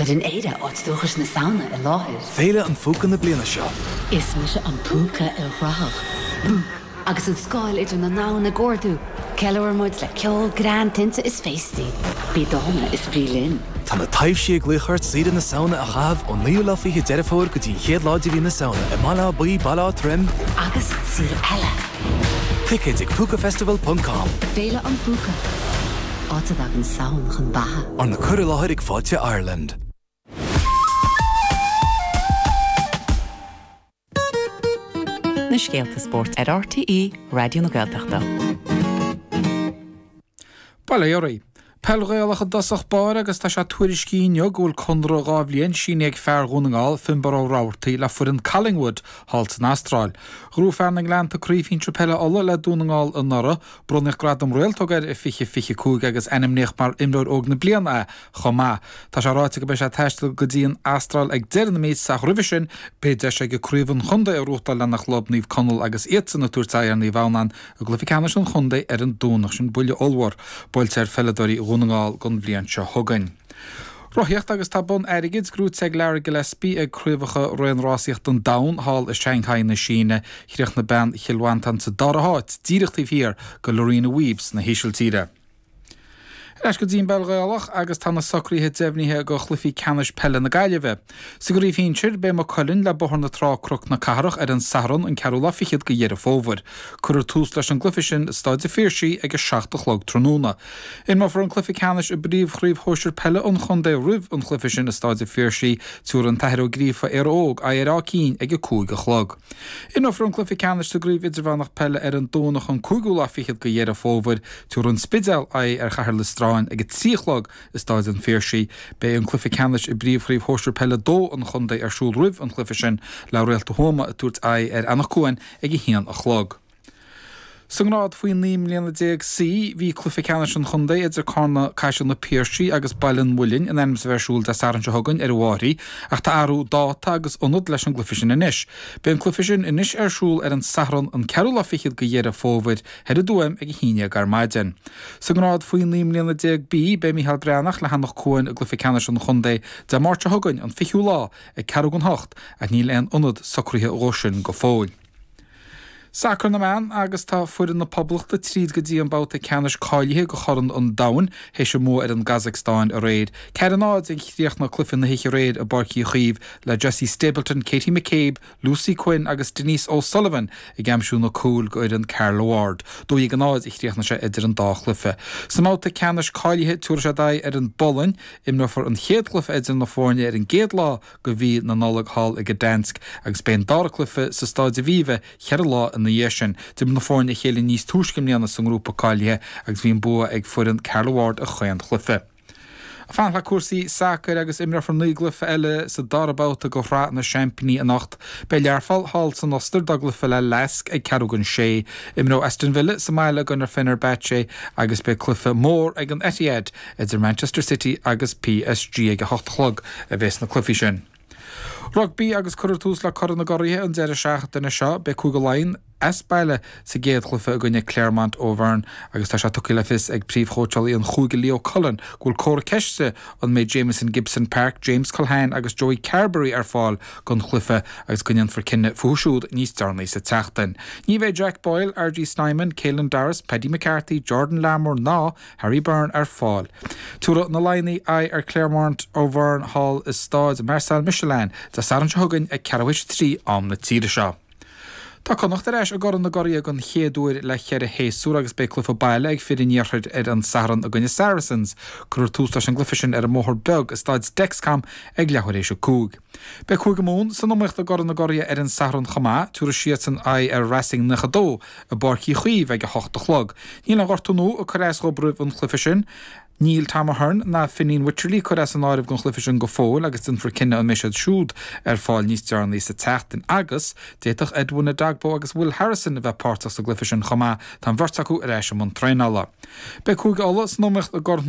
Cuireann Éire áit dúchais na Samhna i láthair. Féile an Phúca na bliana seo. Is mise an Púca ilchruthach, Bouk! Agus an scáil idir na ndomhan ag ardú, ceiliúrann muid le ceol, greann, tinte is féastaí. Bí dána is bí linn! Tá na taibhsí ag glaoch ort saoire na Samhna a chaitheamh ón naoú lá fiche Deireadh Fómhair go dtí an chéad lá de mhí na Samhna i mBaile Átha Buí, Baile Átha Troim, Agus saol eile! Ticéid ag Púcafestival ponc com. Féile an Phúca, áit a dtagann Samhain chun beatha. Arna cur i láthair ag Fáilte Ireland. na scéalta spóirt ar RTÉ Raidió na Gaeltachta. Bail ó Dhia oraibh. Peil Ghaelach i dtosach báire agus tá sé tuairiscithe inniu go bhfuil conradh dhá bhliain sínithe ag fear Dhún na nGall, Finbarr Ó Robhartaigh, le foireann Collingwood thall san Astráil. Ghnóthaigh fear na nGleannta Craobh Shinsir Peile Uladh le Dún na nGall anuraidh, bronnadh gradam Réaltóg air i 2025 agus ainmníodh mar Imreoir Óg na Bliana é chomh maith. Tá sé ráite go mbeidh sé ag taisteal go dtí an Astráil ag deireadh na míosa ach roimhe sin beidh deis aige Craobh an Chontae a ghnóthachtáil lena chlub, Naomh Conaill agus iadsan ag tabhairt aghaidh ar Naomh Adhamhnáin I gcluiche ceannais an chontae ar an Domhnach sin, buille ollmhór buailte ar pheileadóirí Dhún na nGall don bhliain seo chugainn. Rothaíocht agus tá bonn airgid gnóthaithe ag Lara Gillespie ag craobhacha raonrásaíochta an domhain thall i Shanghai na Síne. Chríochnaigh bean Chill Mhantáin sa dara háit, díreach taobh thiar de Lorena Wiebes na hÍsiltíre. Ar ais go dtí an bpeil Ghaelach agus tá na socruithe deimhnithe do chluichí ceannais peile na Gaillimhe. Sa gcraobh shinsir, beidh Maigh Cuilinn le Bóthar na Trá, Cnoc na Cathrach ar an Satharn an ceathrú lá fichead de Dheireadh Fómhair. Cuirfear tús leis an gcluiche sin i Stáid a' Phiarsaigh ag a seacht a chlog tráthnóna. Imreofar an cluiche ceannais i bpríomhchraobh shóisir peile an chontae roimh an chluiche sin i Stáid a' Phiarsaigh, tabharfaidh an tAthair Ó Gríofa, Éire Óg, aghaidh ar Áth Cinn ag a cúig a chlog. Imreofar an cluiche ceannais sa gCraobh Idirmheánach Peile ar an Domhnach an cúigiú lá fichead de Dheireadh Fómhair, tabharfaidh an Spidéal aghaidh ar Chathair Loistreáin ag a trí a chlog i Stáid an Phiarsaigh. Beidh an cluiche ceannais i bpríomhchraobh shóisir peile a dó an chontae ar siúl roimh an chluiche sin le Réalta Thuama ag tabhairt aghaidh ar Eanach Cuain ag a haon a chlog. Sa ngrád faoi 19 mbliana C, bhí cluiche ceannais an chontae idir Carna, Caiseal na Piarsaigh agus Baile an Mhuilinn in ainm is a bheith ar siúl Dé Sathairn seo chugainn ar an Mheáraí ach tá athrú dáta agus ionad leis an gcluiche sin anois. Beidh an cluiche sin anois ar siúl ar an Satharn an ceathrú lá fichead de Dheireadh Fómhair thoir i dTuaim ag a haon déag ar maidin. Sa ngrád faoi 19 mbliana B, beidh Mícheál Breathnach le hEanach Cuain i gcluiche ceannais an chontae Dé Máirt seo chugainn, an fichiú lá, ag ceathrú don hocht ach níl aon ionad socraithe dhó sin go fóill. Sacar na mBan agus tá foireann na Poblachta tríd go dtí an babhta ceannais cáilithe go Chorn an Domhain théis a mbua ar an gCazacstáin aréir. Ceathair a náid a chríochnaigh cluiche na hoíche aréir i bPáirc Uí Chaoimh le Jessie Stapleton, Katie McCabe, Lucy Quinn agus Denise O'Sullivan ag aimsiú na cúil go fhoireann Carla Ward. Dó dhéag a náid a chríochnaigh sé idir an dá chluiche. Sa mbabhta ceannais cáilithe, tiúrfaidh siad aghaidh ar an bPolainn. Imreofar an chéad cluiche idir na foirne ar an gcéad lá go mhí na Nollag thall i Gdansk agus beidh an dara cluiche sa Stáid Aviva ceithre lá ina dhiaidh sin. D'imir na foirne a chéile níos túisce i mbliana sa ngrúpa cáilithe agus bhí an bua ag foireann Carla Ward i chaon chluiche. Ag fanacht le cúrsaí sacair agus imreofar naoi gcluiche eile sa dara babhta de Shraith na Seaimpíní anocht. Beidh Learpholl thall san Ostair dá gcluiche le Lask ag ceathrú don sé. Imreoidh Aston Villa sa mbaile i gcoinne Fenerbahce agus beidh cluiche mór ag an Etihad Idir Manchester City agus PSG ag a hocht a chlog a bheas na cluichí sin. Rugbaí, Agus cuirfear tús le Corn na gCuraithe an deireadh seachtaine seo, beidh Cúige Laighean as baile sa gcéad chluiche i gcoinne Clermont Auvergne agus tá sé tugtha le fios ag príomhchóitseálaí an chúige Leo Cullen go bhfuil comhartha ceiste an mbeidh Jamison Gibson-Park, James Culhane agus Joey Carbery ar fáil don chluiche agus go ndéanfar cinneadh fúthu siúd níos deireanaí sa tseachtain. Ní bheidh Jack Boyle, RG Snyman, Caelan Doris, Paddy McCarthy, Jordan Larmour ná Harry Byrne ar fáil. Tabharfaidh na Laighnigh aghaidh ar Clermont Auvergne thall i Stáid Marcel Michelin Dé Sathairn seo chugainn ag ceathrú éis a trí am na tíre seo. Tá Connacht ar ais i gCorn na gCuradh den chéad uair le ceithre shéasúr agus beidh cluiche baile ag fir an iarthair ar an Satharn i gcoinne Saracens. Cuirfear tús leis an gcluiche sin ar an mBóthar Beag i Stáid Dexcom ag leathuair éis a cúig. Beidh Cúige Mumhan san iomaíocht i gCorn na gCuradh ar an Satharn chomh maith. Tabharfaidh siadsan aghaidh ar Racing 92. i bPáirc Uí Chaoimh ag a hocht a chlog. Níl aon ghortú nua ag cur as dóibh roimh an chluiche sin. Níl Tom Ahern ná Fineen Wycherley curtha as an áireamh don chluiche sin go fóill agus déanfar cinneadh an mbeidh siad siúd ar fáil níos deireanaí sa tseachtain. Agus d'fhéadfadh Edwin Edogbo agus Will Harrison a bheith páirteach sa gcluiche sin chomh maith, tá an bheirt acu ar ais i mbun traenála. Beidh Cúige Uladh san iomaíocht i gCorn na